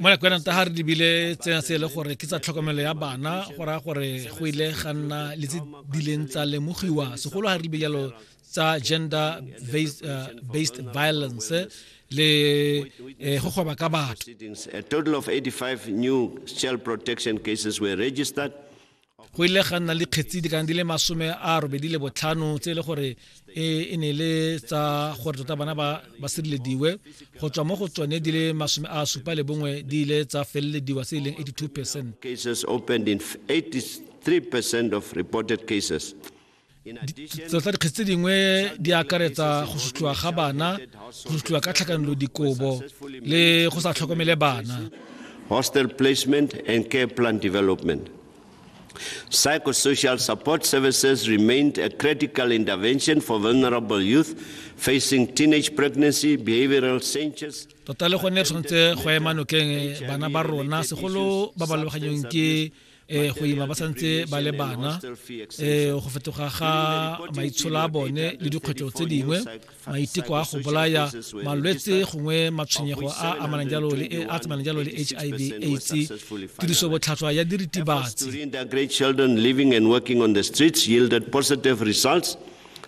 mo nakong ta ga re lebile tsena se e le gore ke tsa tlhokomelo ya bana go raya gore go ile ga nna le tse dileng tsa lemogiwa segolo ga re lebile jalo tsa gender based, uh, based violence le eh, go goba ka batho a total of 85 new child protection cases were registered go ile ga nna le kgetsi di kana di le masome a robedi le botlhano tse e le gore e, e ne le tsa gore tota bana ba ba sirelediwe go tswa mo go tsone di le masome a supa le bongwe di ile tsa felelediwa se e leng 82 percent cases opened in 83 percent of reported cases tsatsa dikgetsi tse dingwe di akaretsa go sutliwa ga bana go sutliwa ka tlhakanelo dikobo le go sa tlhokomele bana hostel placement and care plan development Psychosocial support services remained a critical intervention for vulnerable youth facing teenage pregnancy, behavioral changes. Tota le gone tshwanetse go ema nokeng bana ba rona segolo ba ba lebaganyong ke eh go ima ba santse ba le bana eh go fetoga ga maitsholo a bone le dikgwetlho tse dingwe maiteko a go bolaya malwetse gongwe matshwenyego a amanang jalo le a tsamayang jalo le HIV AIDS tiriso botlhatswa ya diritibatsi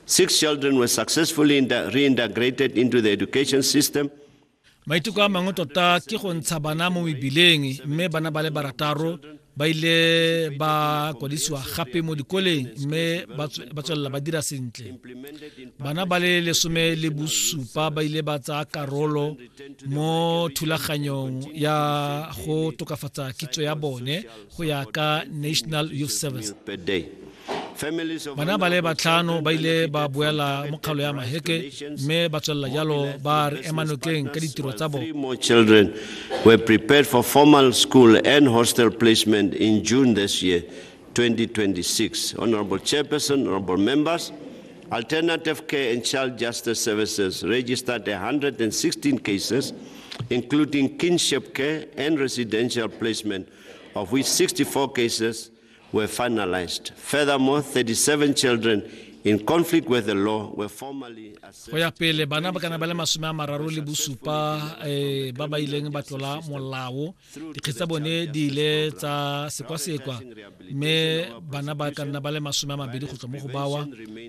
Six children were successfully reintegrated into the education system. maiteko a mangwe tota ke go ntsha bana mo mebileng mme bana ba le barataro ba ile ba kwadisiwa gape mo dikoleng mme ba tswelela ba dira sentle bana ba le lesome le bosupa ba ile ba tsaya karolo mo thulaganyong ya go tokafatsa kitso ya bone go ya ka national youth service bana ba le batlhano ba ile ba boela mo kgaolo ya maheke mme ba tswelela jalo ba re ema nokeng ka ditiro tsa bone were prepared for formal school and hostel placement in June this year, 2026. Honorable Chairperson, honorable members, Alternative Care and Child Justice Services registered 116 cases, including kinship care and residential placement of which 64 cases were finalized. Furthermore, 37 children in conflict with the law were formally go ya pele bana ba kana ba le masome a mararo le bosupa um ba ba ileng ba tlola molao dikgetse tsa bone di ile tsa sekwasekwa mme bana ba ka nna ba le masome a mabedi go tswa mo go bawa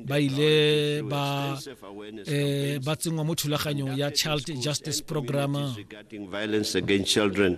ba ile ba um ba tsenngwa mo thulaganyong ya child justice program violence against children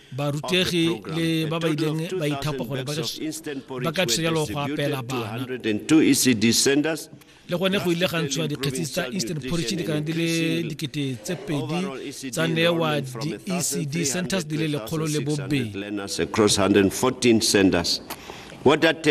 barutegi le ba ba ileng ba ithapa gore ba ka thusa jalo go apela bana le gone go ile ga ntshiwa dikgetsi tsa eastern porridge di kana di le dikete tse pedi tsa newa di-ecd centers di le lekgolo le bobedi